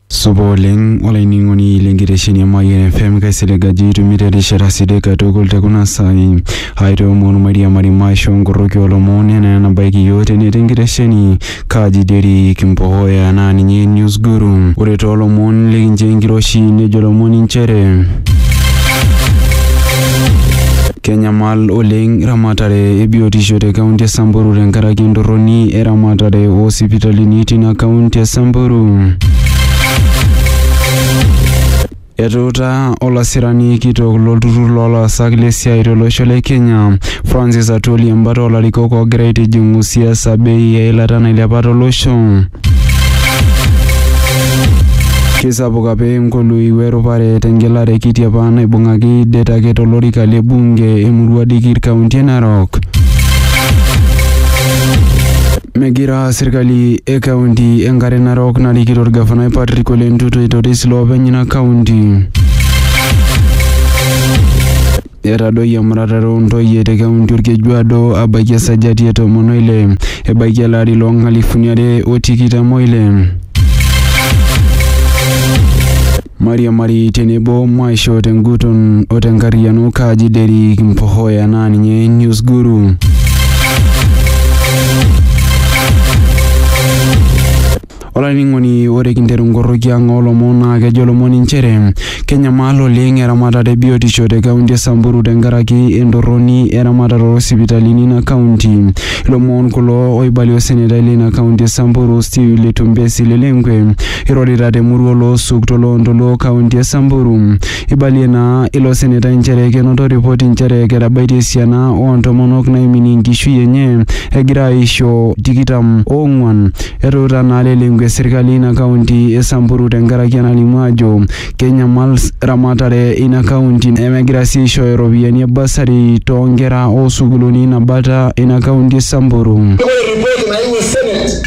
supa oleng olainining'oni lenkitesheni e Mayian FM kaisilig ajo itumito erishata sidai katukul te kuna saai aitoomon mairiamari maisho nkorroki olomon enaa enabaiki iyiook tene tenkitesheni Kaji Deri Kimpohoya naa ninye News Guru ore toolomon likincho enkiroshi nejo lomoni nchere Kenyamal oleng ramatare e biotisho te kaunti e Samburu tenkaraki entorroni e ramatare oo sipitalini tina kaunti e Samburu. Etuuta olasirani kitok lolturrur loolaasak le siai to losho le Kenya, Francis Atwoli embata oo larikok oogira aitijing'u siasa bei e ilata nailepa to losho. Keisapuk apa engolui werupare tengelare kiti apa naibung'aki det ake tolorika le bunge emurua Dikir kaunti e Narok. Megira serkali e kaunti enkare Narok narikito olgafanai Patrick Ole Ntutu aitoris loopeny ina kaunti. etadoyie emuratare oontoyie te kaunti Orkejuado abaiki esajati e tomon oile ebaiki ele ari loo nkalifuni are o tikitam oile. Mairiamari tenebo maisho tenguton o tenkarriyiano Kaji Derrick Mpohoya naa ninye News Guru. Olainining'oni ore kinteru nkoroki ang oolomon naa kejo lomon inchere kenyamal oleng eramatare biotisho te kaunti e Samburu tenkaraki entorroni eramatare oo sipitalini ina kaunti. Ilomon kulo oibalie osenetai leina kaunti e Samburu Steve Letumbesi Lelenkwe eirorita te murua Oloosuk to loontoluo kaunti e Samburu. Eibalie naa ilo senetai nchere kenoto ripoti nchere ketabaitie esiana oo ntomonok naiminie enkishui enye egira aaisho tikitam oong'uan. Etuutaa naa Lelengwe esirkali eina kaunti e Samburu tenkaraki enalimu ajo kenyamal ramatare eina kaunti nemegira sii aishooyo ropiyiani e basari too nkera oo sukuuluni ina bata eina kaunti e Samburu. Ore ripoti nayieu e Senate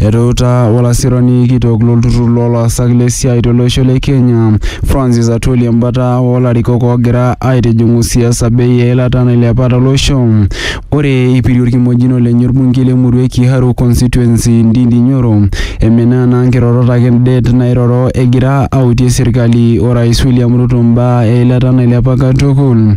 Etuuta olasirani kitok lolturrur loolaasak lesiai tolosho le Kenya Francis Atwoli embata oolarikok oogira aitijing'u siasa bei e ilata nailepa tolosho. Ore eipirie olkimojino lenye olbungei le murua e Kiharu Constituency Ndindi Nyoro emenaa naa nkirorot ake det nairoro egira autie serkali o Rais William Ruto mbaa e ilata nailepa katukul.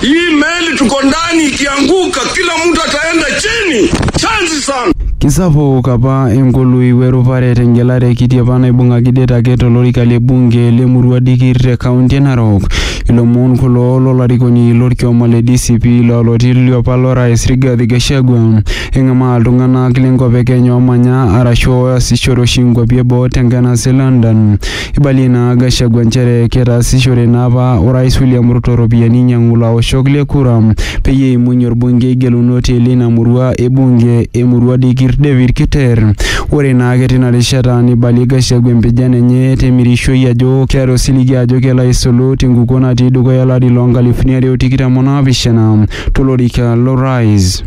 Hii meli tuko ndani, ikianguka kila mtu ataenda chini. Chanzi sana. Kisapuk apa engoloi werupare tengelare kiti apa naibung'aki det ake tolorika le bunge le murua Dikir te kaunti e Narok. Ilomon kulo lolarikoni lorkioma le DCP lolotii liopa lorais Rigathi Gachagua. Eng'amaa iltung'anak lenkop e Kenya omanya arashu oasishore oshi nkuapi e boo tenkae naasi London. Eibalie naa Gachagua nchere ketaasishore naa apa Orais William Ruto ropiyiani einyiang'u laoshok le kura peyie eimunye orbungei gelunoti leina murua e bunge e Murua Dikir David Keter. Ore naake tina rishata neibalie Gachagua empijan enye te mirishoi ajo keeta osiligi ajo kelo aisulu te nkukuo natii dukuya olari loo nkalifuni are o tikitam o naapishana to lorika lo Rais.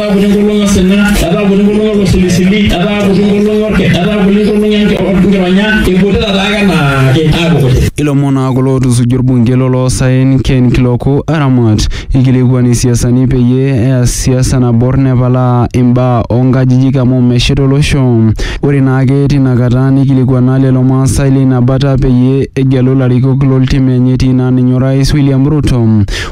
etaa kuti nkolong'i osina, etaa kuti nkolong'i olosilisili, etaa kuti nkolong'i orke, etaa kuti nkolong'i enki- enkironya, eipotita taake anaake aaku kuti. Ilomon naa kulo ootusuja orbungei loloosaen Ken Kiloku Aramat eikilikuani siasani peyie eas siasa nabor nepalaa imbaa oo nkajijik amu mesheta olosho. Ore naake tina kata neikilikuana lelo Maasai leina bata peyie egelu larikok lo ltim lenye etii naa ninye Orais William Ruto.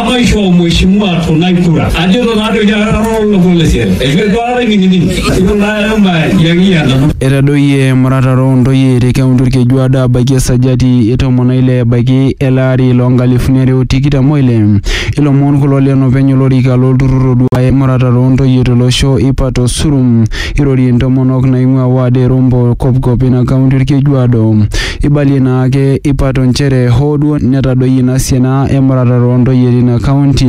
Amaisho mheshimiwa Tonai Kura. Ajoto naadoi kekararo olopon le siai. Ekeduaare kinining. Ilo naa embae yakiyiana. Etadoyie emuratare oo ntoyie te kaunti Olkejuado aabaiki esajati e tomon o ile ebaiki ele ari loo nkalifuni are o tikitam o ile. Ilomon kulo lenopeny olorika lo lturrur oduaya emuratare oo ntoyie to losho Ipat Osuru eirorie ntomonok naing'ua ward e Rombo Kopkop ina kaunti Olkejuado. Eibalie naa ake Ipato nchere hoo duo netadoyie ina siana emuratare oo ntoyie tina kaunti,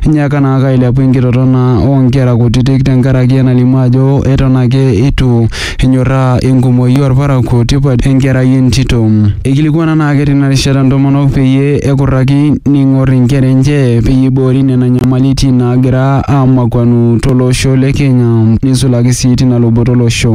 enyaaka naa ake ailepu enkitotona oo nkera kutitik tenkaraki enalimu ajo eton ake eitu enyorraa enkumoi olparakuo tipat e nkerai e ntito. Eikilikuana naa ake tina rishata ntomonok peyie ekurraki neing'or inkera enche peyie eiboori nena nyamalitin naagira aamakuanu to losho le Kenya neisulaki sii tina luboto o losho.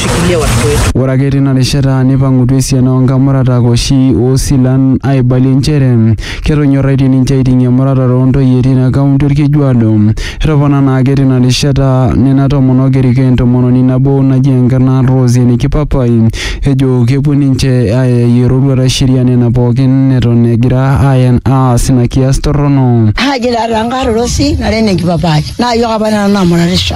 kushikilia watoto wetu. Ore ake tina rishata neipang'utua esiana oonkamuratak oshi oosilan aibalie nchere ketonyorraitie ninche aiting'ie emuratare oontoyie tina kaunti Olkejuado. Etopona naake tina rishata nena tomonok erikoo entomononi nabo naji enkarna Rose Enikipapai ejo kepuo ninche aayayie eroruata e sheria nena pookin neton egira aayen aas ina kias torrono. Naaji taa enkarna Rose nara Enikipapai naa iyiok apa nena naamuratisho.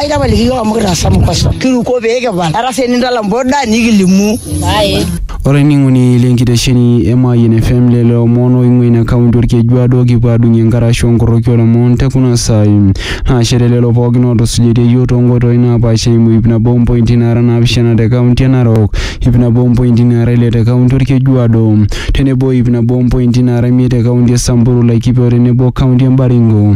aitapaliki yiok amu kitaasa mkosa kiruko pee kipal etaa sii enintala boda nikilimu Olainining'oni le nkitesheni e Mayian FM lelo omon oing'ua ina kaunti Olkejuado kipuo aadung'ie enkarasha oo nkoroki oo lomon te kuna saai. Naashere lelo pookin ootusujatie iyiook too nkoitoi naapaasha eimu ip nabo ompointi naara naapishana te kaunti e Narok, ip nabo ompointi naara ile te kaunti Olkejuado, tenebo o ip nabo ompointi naara imiet te kaunti e Samburu, Laikipia o tenebo kaunti e Baringo.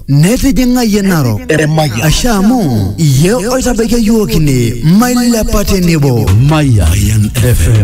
netijing'a yie narok Eremaya. ashe amu iye oitabaika yiook ine mailepa tenebo Mayan FM.